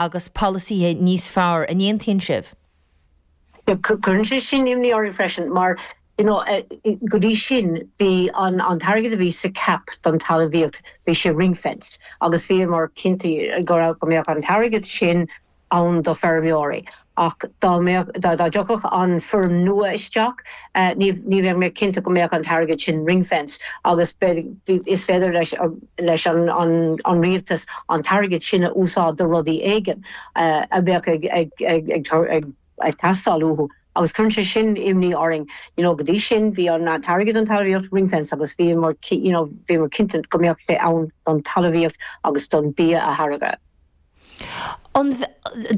agus polasaithe níos fearr. An aontaíonn sibh? Cuireann sé sin imní orainn freisin mar go dtí sin bhí an t-airgead a bhí sa CAP don talmhaíocht, bhí sé ring-fenced agus bhíomar cinnte go mbeadh an t-airgead sin ann do feirmeoirí ach dá dtiocfadh an foirm nua isteach, ní bheadh muid cinnte go mbeadh an t-airgead sin ring-fenced agus is féidir leis an rialtas an t-airgead sin a úsáid do rudaí éigin a bheadh ag teastáil uathu agus cuireann sé sin imní orainn. You know, go dtí sin, bhí an t-airgead don talmhaíocht ring-fenced agus bhíomar, you know, bhíomar cinnte go mbeadh sé ann don talmhaíocht agus don bia a tháirgeadh.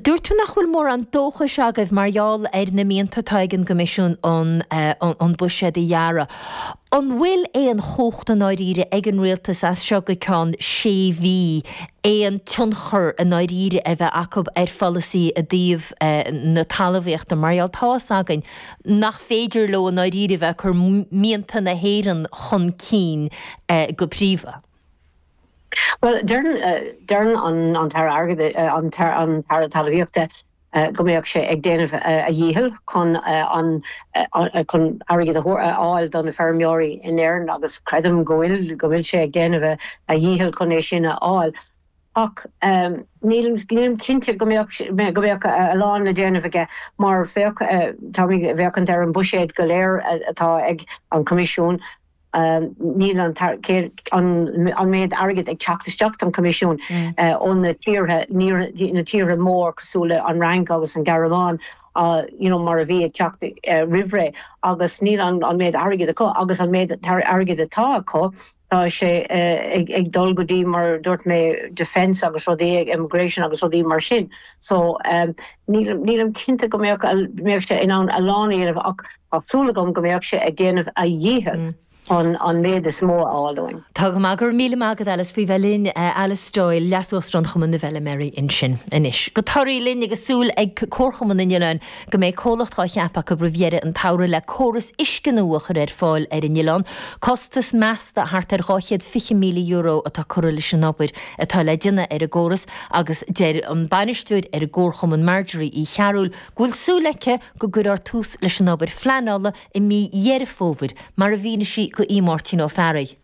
Dúirt tú nach bhfuil mórán dóchais agaibh mar gheall ar na mianta atá ag an gCoimisiún an buiséad a ghearradh. An bhfuil aon chumhacht i ndáiríre ag an Rialtas as seo go ceann sé mhí aon tionchar i ndáiríre a bheith acu ar pholasaí i dtaobh na talmhaíochta mar gheall tá's againn nach féidir leo i ndáiríre a bheith ag cur mianta na hÉireann chun cinn go príomha. Bhuel, deireann an tAire Airgid, an tAire Talmhaíochta go mbeadh sé ag déanamh a dhícheall chun airgead a fháil do na feirmeoirí in Éirinn agus creidim go bhfuil, go bhfuil sé ag déanamh a dhícheall chun é sin a fháil ach nílim cinnte go mbeadh a lán le déanamh aige mar féachann tú ar an buiséad go léir atá ag an Choimisiún. níl an méid airgid ag teacht isteach don Choimisiún ó na tír, na tíortha mór cosúil leis an Fhrainc agus an Ghearmáin, you know mar a bhí ag teacht roimh ré agus níl an méid airgid acu agus an méid airgid atá acu tá sé ag dul go dtí mar a dúirt mé defence agus rudaí, immigration agus rudaí mar sin so nílim cinnte go mbeadh sé in ann a lán a dhéanamh ach Tá súil agam go mbeadh sé ag déanamh a dhícheall chun an méid is mó a fháil dúinn. Tá go maith. Go raibh míle maith agat, Alice, faoi bheith linn. Alice Doyle, Leas-Uachtarán Chumann na bhFeirmeoirí ansin. Anois go Toraí linn agus súil ag Comharchumann an oileáin go mbeidh comhlacht á ceapadh acu roimh dheireadh an tsamhraidh le córas uisce nua a chur ar fáil ar an oileán. Costas measta thart ar €220,000 atá curtha leis an obair atá le déanamh ar an gcóras agus deir an Bainisteoir ar an gComharchumann, Marjorie Uí Chearbhaill, go bhfuil súil aici go gcuirfear tús leis an obair phleanála i mí Dheireadh Fómhair, mar a mhínigh sí do Mháirtín Ó Fearraigh.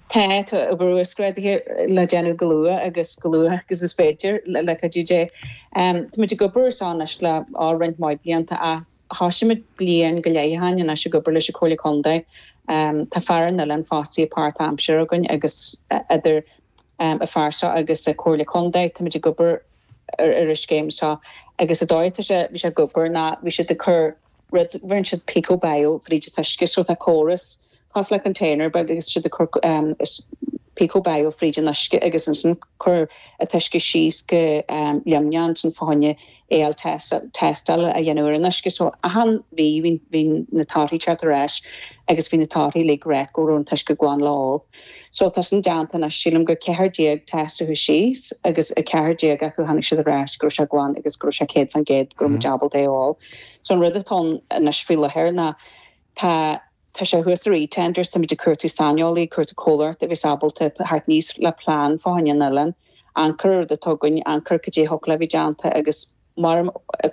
Tá obair uasghrádaithe le déanamh comh luath agus comh luath agus is féidir, le cuidiú Dé. Táimid ag obair air seo anois le roinnt mhaith blianta ach thoisigh muid bliain go leith ó shin anois ag obair leis an Chomhairle Contae. Tá fear ar an oileán fostaithe páirtaimseartha againn agus idir an fear seo agus an Chomhairle Contae, táimid ag obair, ar an scéim seo agus an dóigh atá sé, bhí sé ag obair ná bhí siad ag cur rud, rinne siad píco bail fríd an t-uisce so tá córas, cosúil le container beag agus siad ag cur píco bail fríd an uisce agus ansin cur an t-uisce síos go Luimneach ansin fá choinne AL test, tástáil a dhéanamh ar an uisce so achan mhí bhí na torthaí teacht ar ais agus bhí na torthaí uilig ag ráit go raibh an t-uisce glan le ól. Sea, tá sin déanta anois. Sílim gur 14 test a chuaigh síos agus 14 acu tháinig siad ar ais go raibh sé glan agus go raibh sé 100% go raibh muid ábalta é a ól. So an rud atá ann anois faoi láthair ná tá, tá sé thuas ar eTenders, táimid ag cuartú saineolaí, ag cuartú comhlacht a bheas ábalta theacht aníos le plean fá choinne an oileáin, amharc ar an rud atá againn, amharc ar caidé a thiocfadh le bheith déanta agus, Mar an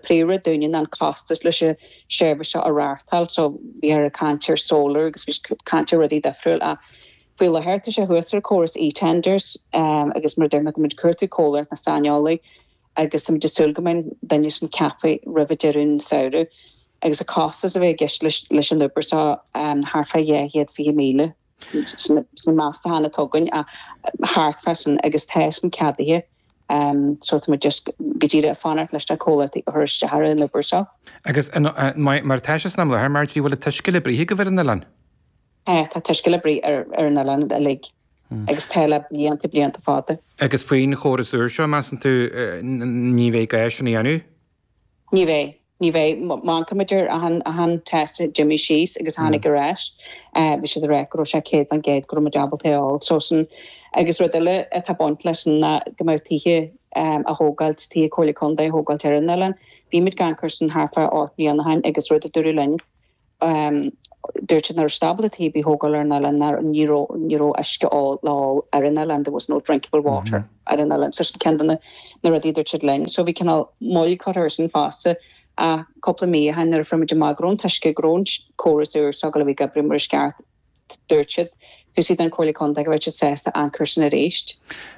príomhrud dúinne ná an costas leis an seirbhís seo a reáchtáil so bhíthear ag caint ar solar agus bhí caint ar rudaí difriúil ach faoi láthair tá sé thuas ar córas e-tenders agus mar dúirt mé muid cuartú comhlacht nó saineolaí agus táimid ag súil go mbeidh duine sin ceaptha roimh deireadh an samhradh agus an costas a bheidh i gceist leis an obair seo thart fá dhá chéad fiche míle. sin na meastacháin atá againn ach thart fá sin agus tá sin ceadaithe so tá muid just go díreach ag fanacht leis na comhlachtaí a chur isteach ar an obair seo. Agus mar atá sé san am i láthair Marjorie, bhfuil an t-uisce le bruith agaibh ar an oileán? Tá, tá an t-uisce le bruith ar an oileán uilig agus tá le blianta blianta fada. Agus faoin chóras úr seo, measann tú ní bheidh gá sin a dhéanamh? Ní bheidh. Ní bheidh. Má amharcaimid ar achan test a d'imigh síos agus a tháinig ar ais. Bhí siad ag rá go raibh sé céad faoin gcéad go raibh muid ábalta é a ól. So sin, agus rud eile atá ag baint leis sin ná go mbeadh tithe á thógáil, tithe Comhairle Contae á thógáil ar an oileán. Bhí muid ag caint ar sin thart fá ocht mbliana ó shin agus rud a dúradh linn, Dúirt siad nach raibh siad ábalta tithe a thógáil ar an oileán, nó ní raibh uisce óil le fáil ar an oileán, there was no drinkable water ar an oileán. So sin ceann de na rudaí a dúirt siad linn. So bhí cineál moill curtha ar sin fosta ach cúpla mí ó shin nuair a fuair muid amach go raibh an t-uisce, go raibh an córas úr seo ag gabháil a bheith ag oibriú mar is ceart, dúirt siad. Dúirt siad an Comhairle Contae go raibh siad sásta amharc ar sin arís.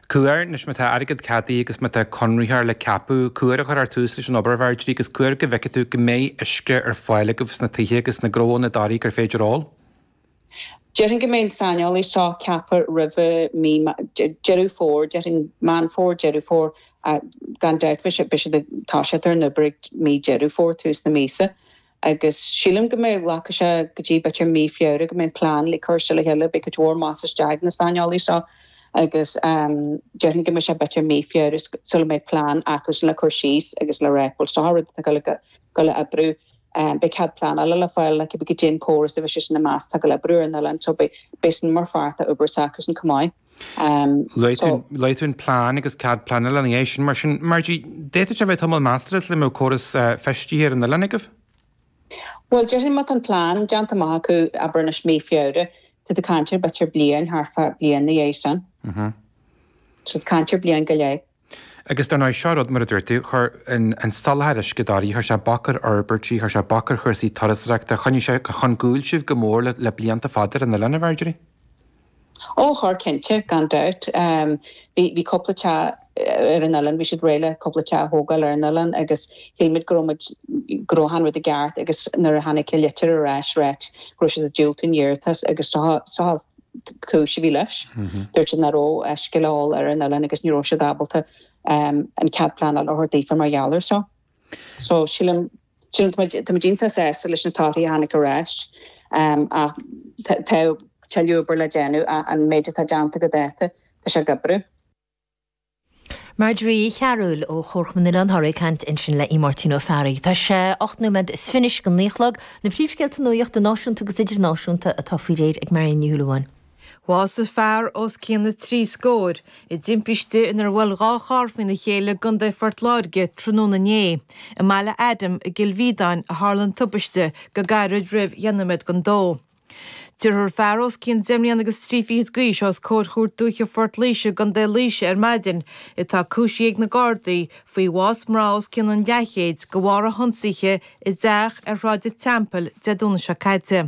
Cá huair anois, má tá airgead ceadaithe agus má tá conraitheoir le ceapadh cá huair a chuirfear tús leis an obair a Mharjorie agus cá huair go bhfeicfidh tú go mbeidh uisce ar fáil agaibh sna tithe agus na gnónna i dToraigh gur féidir ól. Déarfainn go mbeidh an saineolaí seo ceaptha roimhe mí Deireadh Fómhair, déarfainn Meán Fómhair, Deireadh Fómhair gan dabht beidh siad ag toiseacht ar an obair ag mí Deireadh Fómhair, tús na míosa. agus sílim go mbeidh, glacfaidh sé go dtí b'fhéidir mí Feabhra go mbeidh an plean uilig curtha le chéile, beidh cuid mhór mais istigh ag na saineolaí seo agus déarfainn go mbeidh sé b'fhéidir mí Feabhra sula mbeidh plean acusan le cur síos agus le rá bhuel seo an rud atá ag gabháil a, ag gabháil a oibriú, beidh cead pleanála le fáil le cibé caidé an córas a bheas siadsan ag meas atá ag gabháil a oibriú ar an oileán so beidh, beidh sin mar pháirt den obair s'acusan chomh maith. Le cois an plean agus cead pleanála ina dhiaidh sin, mar sin. Marjorie, d'fhéadfadh sé a bheith tamall measartha sula mbeidh córas feistithe ar an oileán agaibh? Bhuel, déarfainn má tá an plean déanta amach acu, abair anois Mí Feabhra, tú ag caint ar, b'fhéidir, bliain, thart fá bliain ina dhiaidh sin. Tú ag caint ar bliain go leith. Agus dar ndóigh, seo rud, mar a dúirt tú, chuir an soláthar uisce dáiríre, chuir sé bac ar fhorbairtí, chuir sé bac ar chúrsaí turasóireachta, choinnigh sé chun gcúil sibh go mór le blianta fada ar an oileán, a Mharjorie? Ó, chuir cinnte, gan dabht. Bhí cúpla teach ar an oileán, bhí siad réidh le cúpla teach a thógáil ar an oileán agus shíl muid go raibh muid, go raibh achan rud i gceart agus nuair a tháinig litir ar ais, ag rá go raibh siad ag diúltú an iarratas agus tá, tá, chúis a bhí leis. Dúirt siad nach raibh uisce le fáil ar an oileán agus ní raibh siad ábalta an cead pleanála a thabhairt daofa mar gheall air seo. So sílim sílim tá muid tá muid iontach sásta leis na torthaí a tháinig ar ais ach tá tuilleadh oibre le déanamh ach an méid atá déanta go dáta tá sé ag oibriú. Marjorie Uí Chearbhaill ó Chomharchumann Oileán Thoraí ag caint ansin le Áine Ní Fhearraigh. Tá sé ocht nóiméad is fiche go naoi a chlog. Na príomhscéalta nuachta náisiúnta agus idirnáisiúnta atá faoi réir ag Marion Ní Shúilleabháin. Bhásaigh fear os cionn na trí scór i dtimpiste inar bhuail dhá charr faoina chéile i gContae Phort Láirge tráthnóna inné. I mBaile Adaim i gCill Mhíodáin a tharla an tubaiste go gairid roimh dheich nóiméad don dó. Tabharfar fear os cionn deich mbliana agus trí fichid d'aois os comhair Chúirt Dúiche Phort Laoise i gContae Laoise ar maidin atá cúisithe ag na Gardaí faoi bhás mná os cionn an leathchéid de bharr a hionsaithe i dteach ar Shráid an Teampaill Dé Domhnaigh seo caite.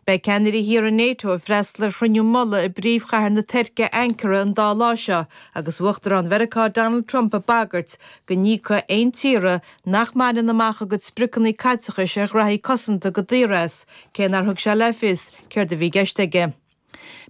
Beidh ceannairí thíortha NATO ag freastal ar chruinniú mullaigh i bpríomhchathair na Tuirce, Ankara, an dá lá seo agus Uachtarán Mheiriceá Donald Trump ag bagairt go n-íocfaidh aon tír nach mbaineann amach a gcuid spriocanna caiteachais ar ghnóthaí cosanta go daor as, cé nár thug sé le fios céard a bhí i gceist aige.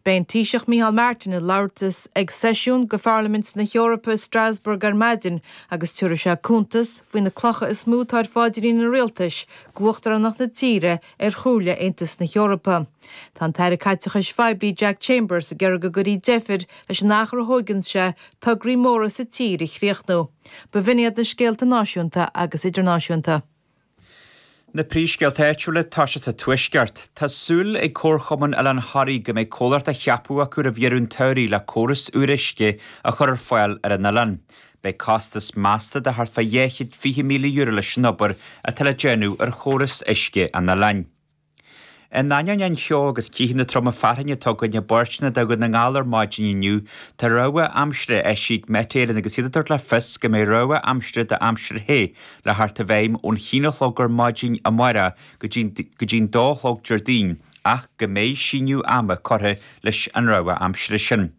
Beidh an Taoiseach Micheál Martin ag labhairt ag seisiún de Pharlaimint na hEorpa i Strasbourg ar maidin agus tabharfaidh sé cuntas faoi na clocha is mó atá ar phaidrín an Rialtais do uachtaránacht na tíre ar Chomhairle Aontas na hEorpa. Tá an tAire Caiteachais Phoiblí Jack Chambers ag iarraidh go gcuirfí deifir leis an achar a thóigeann sé tograí móra sa tír a chríochnú. B'in iad na scéalta náisiúnta agus idirnáisiúnta. Na príomhscéalta áitiúla tosóidh sa Tuaisceart. Tá súil ag Comharchumann Oileán Thoraí go mbeidh comhlacht ceaptha acu roimh dheireadh an tsamhraidh le córas úr uisce a chur ar fáil ar an oileán. Beidh costas measta de thart fá dhá chéad fiche míle euro leis an obair atá le déanamh ar chóras uisce an oileáin. In ainneoin an cheo agus ceathanna troma fearthainne atá againn i bpáirteanna de Dhún na nGall ar maidin inniu, tá rabhadh aimsire eisithe ag Met Éireann agus iad ag tabhairt le fios go mbeidh rabhadh aimsire d'aimsir the le theacht i bhfeidhm ón haon a chlog ar maidin amárach go dtí'n dó a chlog Déardaoin ach go mbeidh síneadh ama curtha leis an rabhadh aimsire sin.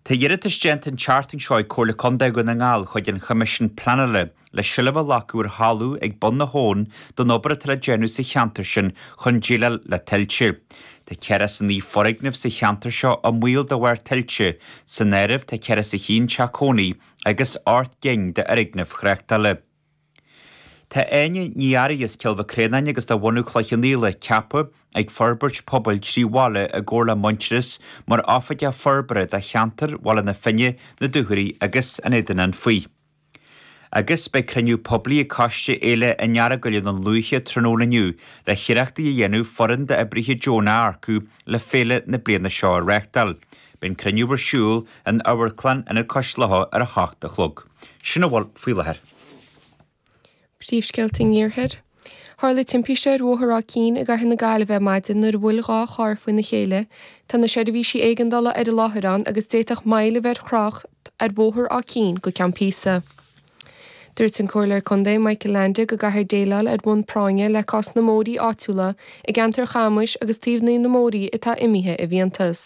Tá iarratas déanta an tseachtain seo ag Comhairle Contae Dhún na nGall chuig an Choimisiún Pleanála le seilbh a ghlacadh ar thalamh ag Bun na hAbhann don obair atá le déanamh sa cheantar sin chun déileáil le tuilte. Tá ceathracha is a naoi foirgneamh sa cheantar seo i mbaol de bharr tuilte. San áireamh tá ceathracha is a haon teach cónaí agus ocht gcinn d'fhoirgnimh thráchtála. Tá Áine Ní Fhearraigh as Cill Mhic Réanáin agus de bhunadh Chloich Cheann Fhaola ceaptha ag Forbairt Pobail Trí Bhaile i gcomhar le Muintearas mar Oifigeach Forbartha do cheantar Bhaile na Finne, na Dúchoraidh agus an Éadain Anfaigh. Agus beidh cruinniú poiblí ag Coiste Fhéile an Earagail i nDún Lúiche tráthnóna inniu le hiarrachtaí a dhéanamh foireann d'oibrithe deonacha a earcú le féile na bliana seo a reáchtáil. Beidh an cruinniú ar siúl in Amharclann Ionad Cois Locha ar a hocht a chlog. Sin a bhfuil faoi láthair. Príomhscéalta an Iarthair. Tharla timpiste ar Bhóthar Áth Cinn i gCathair na Gaillimhe ar maidin nuair a bhuail dhá charr faoina chéile. Tá na seirbhísí éigeandála ar an láthair ann agus d'fhéadfadh moill a bheith ar thrácht ar Bhóthar Áth Cinn go ceann píosa. Dúirt an Comhairleoir Contae Michael Leainde go gcaithfear déileáil ar bhonn práinne le cás na mbóithrí áitiúla i gceantar Chamuis agus taobhannaí na mbóithrí atá imithe i bhfiántas.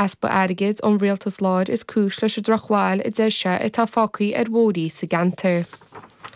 Easpa airgid ón rialtas láir is cúis leis an drochbhail a deir sé atá fágthaí ar bhóithrí sa gceantar.